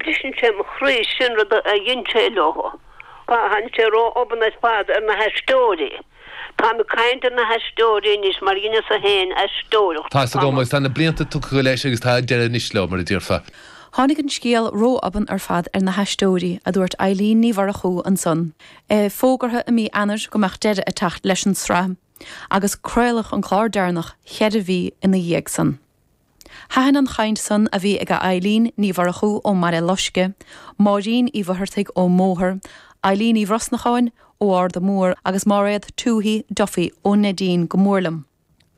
Briseann sé mo chroí sin rud a dheineadar leo. Tá, tháinig sé ró-obann ar fad ar na haisteoirí. Táim ag caint ar na haisteoirí anois mar dheineas-sa féin aisteoireacht Tá's agam, tamall. agus tá na blianta tugtha leis agus tá deireadh anois leo, mar a déarfá. Tháinig an scéal ró-obann ar fad ar na haisteoirí, a dúirt Eileen Ní Mhurchú ansan. Fógraíodh i mí Eanáir go mbeadh deireadh ag teacht leis an tsraith agus craoladh an clár deireanach cheithre mhí ina dhiaidh san. Thaitin an chaint san a bhí ag Eileen Ní Mhurchú ó Bhaile Loiscthe, Máirín Uí Mhuircheartaigh ó Mhárthain, Eileen Uí Bhrosnacháin ó Arda Mór agus Máiréad Tuohy Duffy ó Neidín go mór liom.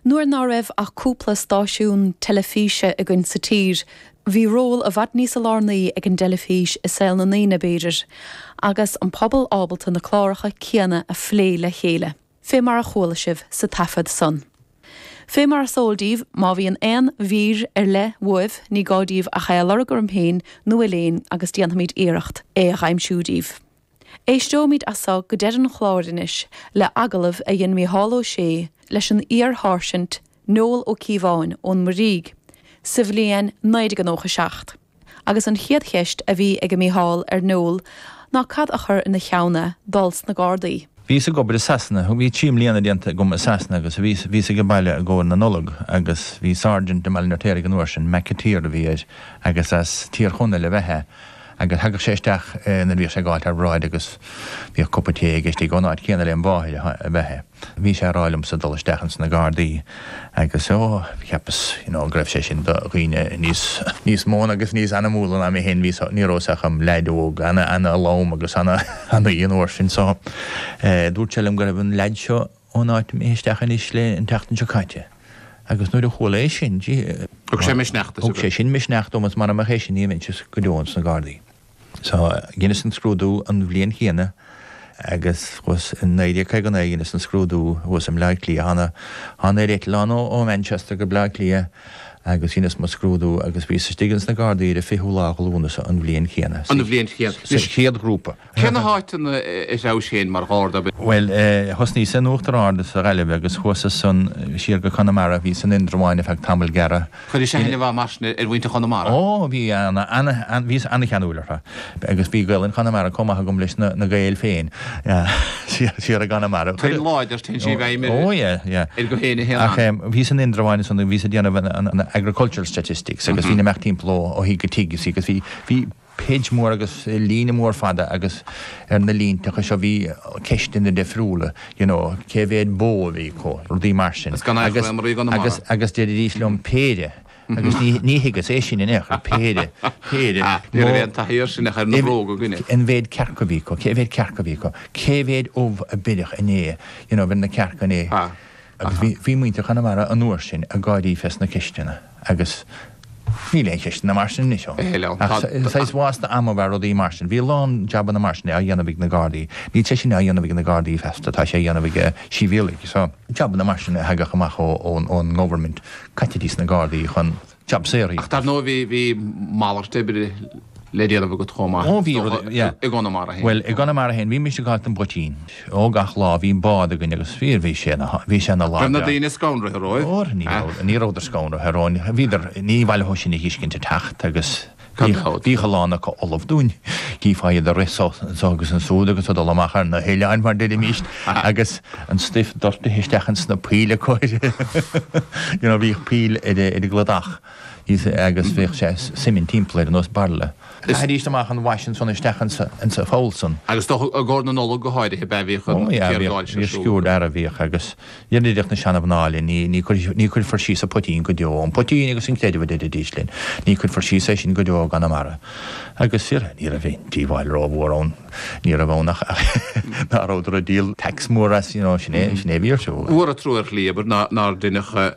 Nuair ná raibh ach cúpla stáisiún teilifíse againn sa tír, bhí ról i bhfad níosa lárnaí ag an dteilifís i saol na ndaoine, b'fhéidir, agus an pobal ábalta na cláracha céanna a phlé le chéile. fé mar a chuala sibh sa taifead san. Fé mar is eol díbh, má bhíonn aon mhír ar leith uaibh, ní gá díbh ach é a lorg orm féin nó ar Léan agus déanfaimid iarracht é a dh'aimsiú díbh. Éisteoimid as so go deireadh an chláir anois le hagallamh a dhein Mícheál Ó Sé leis an iar-Sháirsint Noel Ó Cíobháin ón Muirígh sa bhliain 1997. agus an chéad cheist a bhí ag Mícheál ar Noel ná cad a chuir ina cheann é dul sna Gardaí. Bhíos ag obair i Sasana, bhí trí mbliana déanta agam i Sasana agus bhíos, bhíos age baile i gcomhair na Nollag agus bhí sáirsint i mBaile an Fheirtéaraigh an uair sin, McAteer a bhí air agus as Tír Chonaill ab ea é agus thagadh sé isteach nuair a bhíodh sé ag gabháilt thar bráid agus bhíodh cupa tae aige istigh ón áit chéanna lem mháthair ab ea é. Bhí sé ag rá liomsa dul isteach ins na Gardaí agus, ó, cheapas, you know, go raibh sé sin do dhaoine níos, níos mó agus níos ainmniúla ná mé féin. Bhíos, ní rabhas ach im leaid óg, ana, ana lom agus ana, ana an uair sin. So, eh, dúirt sé liom go raibh an leaid seo ón áit imithe isteach ins na Gardaí an tseachtain seo caite agus nuair a chuala é sin, gee, Thug sé misneach duit. Thug sé sin misneach dom agus mara mbeadh é sin ní bheinnse go deo ins na Gardaí. Sea, dheineas an scrúdú an bhliain chéanna agus thuas, i 1959 dheineas an scrúdú thuas i mBleá Cliath, thána, thána ar eitleán ó, ó Manchester go Bleá Cliath agus dheineas mo scrúdú agus bhíos istigh ins na gardaí ar an 20ú lá de Lúnasa an bhliain chéanna, An bhliain chéanna. sa, sa chéad ghrúpa. Cé na háiteanna a threabhais féin mar gharda? Bhuel eh, thosnaíos in Uachtar Ard sa Ghaillimh agus chuas as san siar go Conamara, bhíos in Indreabháin ar feadh tamaill gearra, Chuiris aithne mhaith mar sin ar mhuintir Chonamara. Ó, bhíos an-cheanúil orthu. Agus bhí Gaelainn Chonamara comh maith agam leis na Gaeil féin siar i gConamara. Tuin láidir, téann sí i bhfeidhm ar éinne a théann ann. Ach bhíos in Indreabháin ansan, bhíos ag déanamh an agricultural statistics agus bhínn ag imeacht timpeall ó thigh go tigh, you see, agus bhí, bhí, Page mór agus líne mór fada agus ar na línteacha seo bhí ceisteanna difriúla, you know, cé mhéad bó a bhí acu, rudaí mar sin. Is gan eachtra é maraíodh an Conamara. Agus, agus deiridís liom péire agus ní, ní thuigeas, é sin in aon chor, péire, péire, Ah, ní raibh aon taithí air sin ach ar na bróga againne. An mhéad cearc a bhí acu, cé mhéad cearc a bhí acu, cé mhéad ubh a beireadh inné, you know, bhí na cearca inné. Ah, aha. Agus bhí, bhí muintir Chonamara an uair sin ag gáirí fé sna ceisteanna. Agus níl aon cheisteanna mar sin anois ann. Níl ann. Ach saghas bhás na ama bhfear rudaí mar sin. Bhí a lán jabanna mar sin á dhéanamh ag na Gardaí. Níl sé sin á dhéanamh ag na Gardaí feasta, tá sé á dhéanamh ag sibhialaigh. So. jabanna mar sin a thagadh amach ón ngovernment, chaithidís na Gardaí chun jab saor a íoc. Ach dar ndóigh bhí malairt oibre. le déanamh agat chomh maith. Ó, bhí rud, yeah. I gConamara féin. Bhuel, i gConamara féin, bhímis ag gabháilt don bpoitín. Ó, gach lá, bhí bád againn agus fir, bhí sé ina, bhí sé ina lán de. Raibh na daoine scanraithe romhaibh? Ó, ní raibh, ní rabhadar scanraithe romhainn. Bhíodar, níor mhaith leo sinn a fheiscint ag teacht agus bhíodh a lán acu ullamh dúinn. Chífeá iad ag rith anso agus ansúd agus ag dul amach ar na hoileáin, mar deirimíst, agus an stuif doirtithe isteach in sna poill acu, you know, bhíodh poill ar an gcladach. Is ea, agus bhíodh sé suimint timpeall ar nós bairille. Chaithidís amach an wash ansan isteach insa pholl san. Agus dócha i gcomhair na Nollag go háirithe, ab ea, a bhíodh an géarghál sin ar siúl? Ó, bhíodh sciúird fhear a bhíodh agus deireadh, deireadh na seanamhná linn, ní chuirfear síos a' poitín go deo, an poitín agus an creideamh a deiridís linn, ní chuirfear síos é sin go deo i gConamara. Agus fíor, ní raibh aon díobháil rómhór ann, ní raibh ann ach nach rabhadar a' díol tax mór as, you know, sin é, sin é a bhí ar siúl. Mór an trua ar shlí, abair, nár deineadh